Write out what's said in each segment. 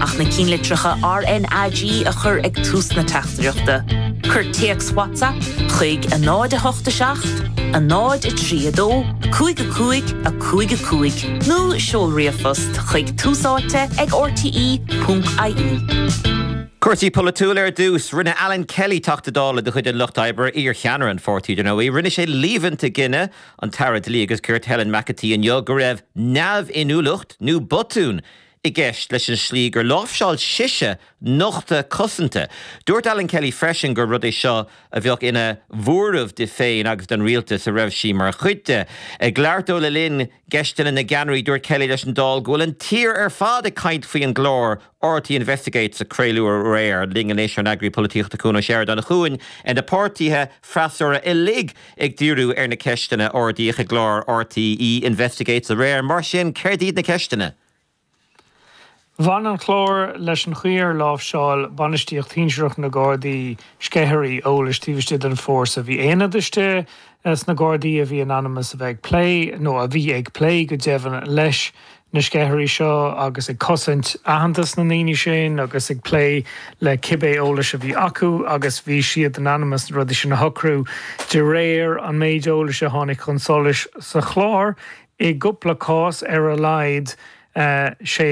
Ach na cinnlitreacha RNAG a chur ag tús na teachtaireachta. Cuir téacs WhatsApp chuig 0 8 7 0 3 2 5 5 5 5 nó seol ríomhphost chuig túsáite ag rte.ie. Cúrsaí polaitiúla ar dtús. Rinne Alan Kelly, Teachta Dála de chuid an Lucht Oibre, iarcheannaire an pháirtí, dar ndóigh, rinne sé líomhaint i gcoinne an tAire Dlí agus Cirt Helen McEntee inniu go raibh neamhinniúlacht nó botún i gceist leis an slí gur láimhseáil sise nochtadh cosanta. Dúirt Alan Kelly freisin gur rud é seo a bheadh ina bhuaireamh di féin agus don rialtas a raibh sí mar chuid de. Ag labhairt dó le linn Cheisteanna na gCeannairí, dúirt Kelly leis an Dáil go bhfuil an tír ar fad ag caint faoi an gclár RTÉ Investigates a craoladh aréir. Linn anois ár n-eagraí polaitíochta Cuan Ó Seireadáin. A Chuain, bhí na páirtithe freasúra uilig ag díriú ar na ceisteanna a ardaíodh i gclár RTÉ Investigates aréir. Mar sin, céard iad na ceisteanna? Bhain an clár leis an chaoi ar láimhseáil bainistíocht shinsearach na nGardaí sceithirí eolais taobh istigh den bhfórsa. Bhí aonaid istigh sna Gardaí a bhí in ainm is a bheith ag plé, nó a bhí ag plé go deimhin, leis na sceithirí seo agus ag cosaint aitheantas na ndaoine sin agus ag plé le cibé eolas a bhí acu agus bhí siad in ainm is na rudaí sin a shocrú de réir an méid eolais a tháinig chun solais sa chlár. I gcupla cás ar a laghad, sé,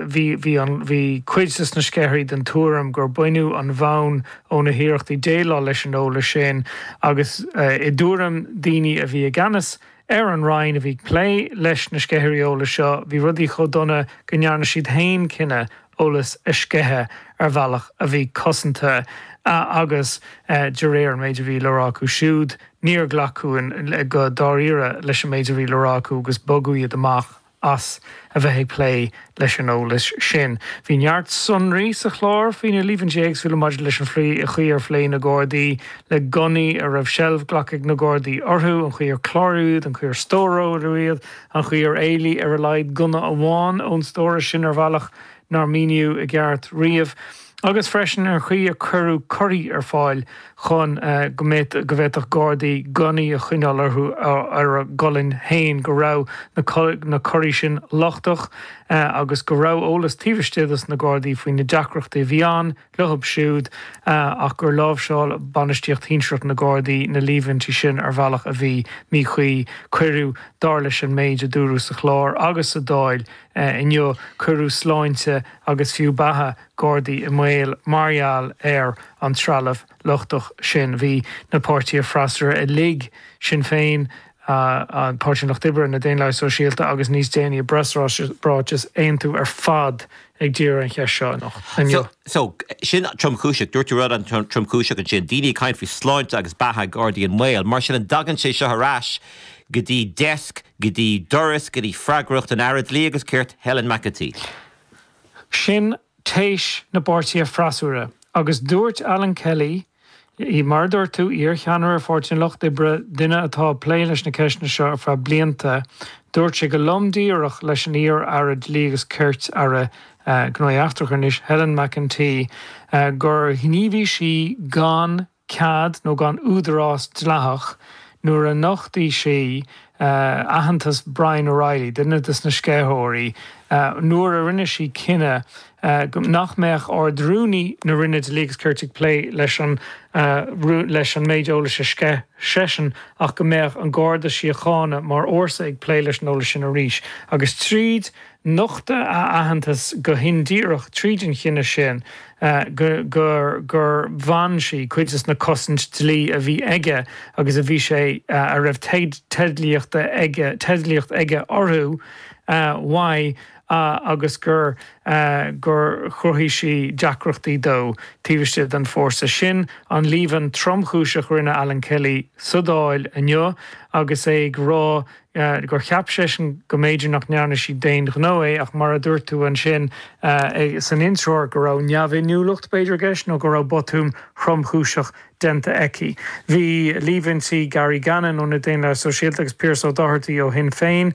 bhí cuid de na sceithirí den tuairim gur baineadh an bhonn ó na hiarrachtaí déileáil leis an eolas sin agus, i dtuairim daoine a bhí i gceannas ar an roinn a bhí ag plé leis na sceithirí eolais seo, bhí rudaí chomh dona go ndearna siad féin cinneadh eolas a sceitheadh ar bhealach a bhí cosanta agus, de réir an méid a bhí le rá acu siúd, níor ghlacadh go dáiríre leis an méid a bhí le rá acu agus bogadh iad amach as a bheith ag plé leis an eolas sin. Bhí neart sonraí sa chlár faoi na líomhaintí éagsúla maidir leis an chaoi ar phléigh na Gardaí le gunnaí a raibh seilbh glactha ag na Gardaí orthu, an chaoi ar cláraíodh iad, an chaoi ar stóráladh iad, an chaoi ar éalaigh ar a laghad gunna amháin ón stóras sin ar bhealach nár míníodh i gceart riamh, agus freisin an chaoi ar cuireadh curraí ar fáil chun go mbeadh, go bhféadfadh gardaí gunnaí a choinneáil orthu ar a gcolainn féin, go raibh na curraí sin lochtach agus go raibh eolas taobh istigh dos na gardaí faoi na deacrachtaí a bhí ann. Leo siúd, ach gur láimhseáil bainistíocht shinsearach na Gardaí na líomhaintí sin ar bhealach a bhí míchuí. Cuireadh, dar leis an méid a dúradh sa chlár agus sa Dáil inniu, cuireadh sláinte agus fiú beatha Gardaí i mbaol mar gheall ar an trealamh lochtach sin. Bhí na páirtithe freasúra uilig, Sinn Féin, an Páirtí an Lucht Oibre, na Daonlathaigh Sóisialta agus níos déanaí i bpreasráiteas aontú ar fad ag díriú ar an cheist seo inniu. So, sin tromchúiseach. Dúirt tú rud ansin tromchúiseach ansin. Daoine ag caint faoi sláinte agus beatha Gardaí i mbaol. Mar sin, an dtagann sé seo ar ais go dtí deasc, go dtí doras, go dtí freagracht an Aire Dlí agus Cirt, Helen McEntee? Sin Téis na bpáirtithe freasúra. Agus dúirt Alan Kelly, mar a dúirt tú, iarcheannaire Pháirtí an Lucht Oibre, duine atá ag plé leis na ceisteanna seo ar feadh blianta, dúirt sé go lom díreach leis an iar-aire dlí agus cirt, aire gnóthaí eachtracha anois, Helen McEntee gur ghníomhaigh sí gan. cead nó gan údarás dleathach nuair a nochtaigh sí aitheantas Brian O'Reilly, duine des na sceitheoirí, nuair a rinne sí cinneadh nach mbeadh Ard-Rúnaí na Roinne Dlí agus Cirt ag plé leis an leis an méid eolais a sceith seisean ach go mbeadh an Garda Síochána mar fhórsa ag plé leis an eolas sin arís agus tríd Nochtadh a aitheantas go hindíreach tríd an chinneadh sin gur bhain sí cuid des na cosaint dlí a bhí aige agus a bhí sé a raibh teid teidlíocht aige teidlíocht aige orthu uaidh agus gur gur chruthaigh sí deacrachtaí dó taobh istigh den fórsa. Sin an líomhain tromchúiseach rinne Alan Kelly sa Dáil inniu agus é ag rá go gur cheap seisean go mb'fhéidir nach ndearna sí d'aon ghnó é ach mar a dúirt tú ansin san intreoir go raibh neamhinniúlacht b'fhéidir i gceist nó go raibh botún thromchúiseach déanta aici. Bhí líomhaintí Gary Gannon ó na Daonlathaigh Sóisialta agus Pearse O'Doherty ó Shinn Féin,